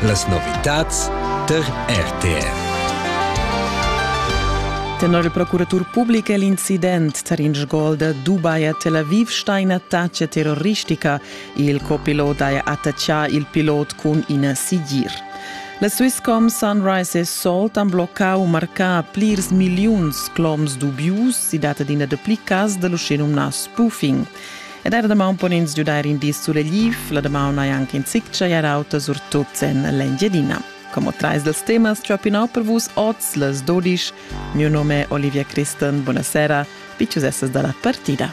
Las novitads tar RTR. Tenor il procuratur public è l'incident tar in sgolda Dubai a Tel Aviv stà in'attacca terroristica. Il copilot ha attaccà il pilot cun ina sigir. La Swisscom Sunrise e Salt han bloccà u marcà plirs milliuns cloms dubius. Si dat adina dapli cas da l'uschenumnà spoofing. Ed er damaun pon ins giudair in di suregliv, la damaun hai anche in zic chagliar auta, surtut en l'Engiadina. Como trais dels temas ciò pinau per vus oz les dodisch. Mio nome è Olivia Christen, buonasera, picciusesses dalla partida.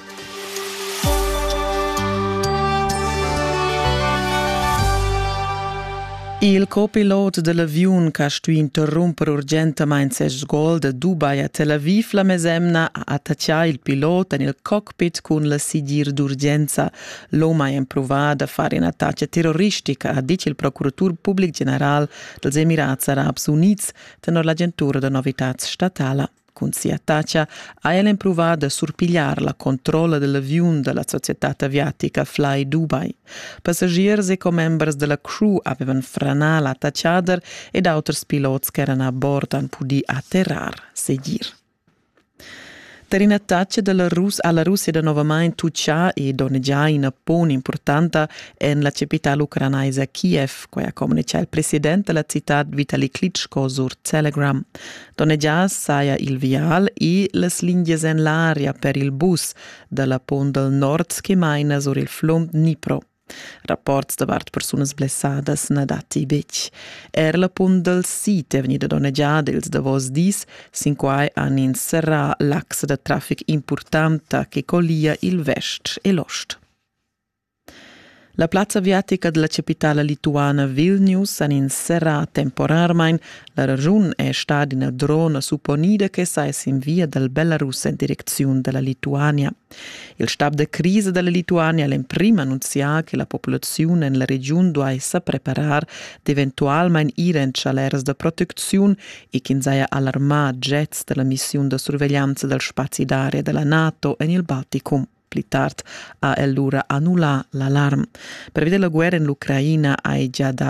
Il copilot dell'avion che ha stuì interrompere urgentemente ses gol da Dubai a Tel Aviv la mesemna ha attaccato il pilot en il coq betg cun la sigir d'urgenza. L'OMA ha empruvà da far in'attacca terroristica, ha ditg il procuratur public general dels Emirats Arabs Units tenor l'agentura da novitads statala. Cun sia attacca ha el empruvà da surpigliar la controlla dell'aviun da la societad aviatica Fly Dubai. Passagiers e commembers della crew avevan franà l'attaccader ed auters pilots ch'eran a bord han pudì atterrar, segir. Per ina taxa dalla Rus ha la Russia danovamain tutgà e donnegià ina pon impurtanta en la capitala ucranaisa Kiev, quai ha communitgà il president da la citad Vitali Klitschko sur Telegram. Donnegià saja il vial e las lingias en l'aria per il bus da la pon dal nord che maina sur il flum Dnipro. Rapports davart persunas blessadas na datti betg. Er la punt dal sid è vegnida donnegiada ils davos dis. Sin quai han ins serrà l'axa da traffic impurtanta che collia il vest e l'ost. La plazza aviatica della capitala lituana Vilnius han ins serrà temporarmain. La ragiun è stata ina drona supponida che sa es in via dal Belarus en direcziun da la Lituania. Il stab da crisa dalla Lituania ha l'emprim annunzià che la populaziun en la regiun duai sa preparar d'eventualmain ir en tschaleras da protecziun e ch'ins haja alarmà jets da la missiun da surveglianza dal spazi d'aria da la NATO en il Balticum. Pli tard ha el lura annullà l'alarm. Pervi della guerra en l'Ucraina hai già dà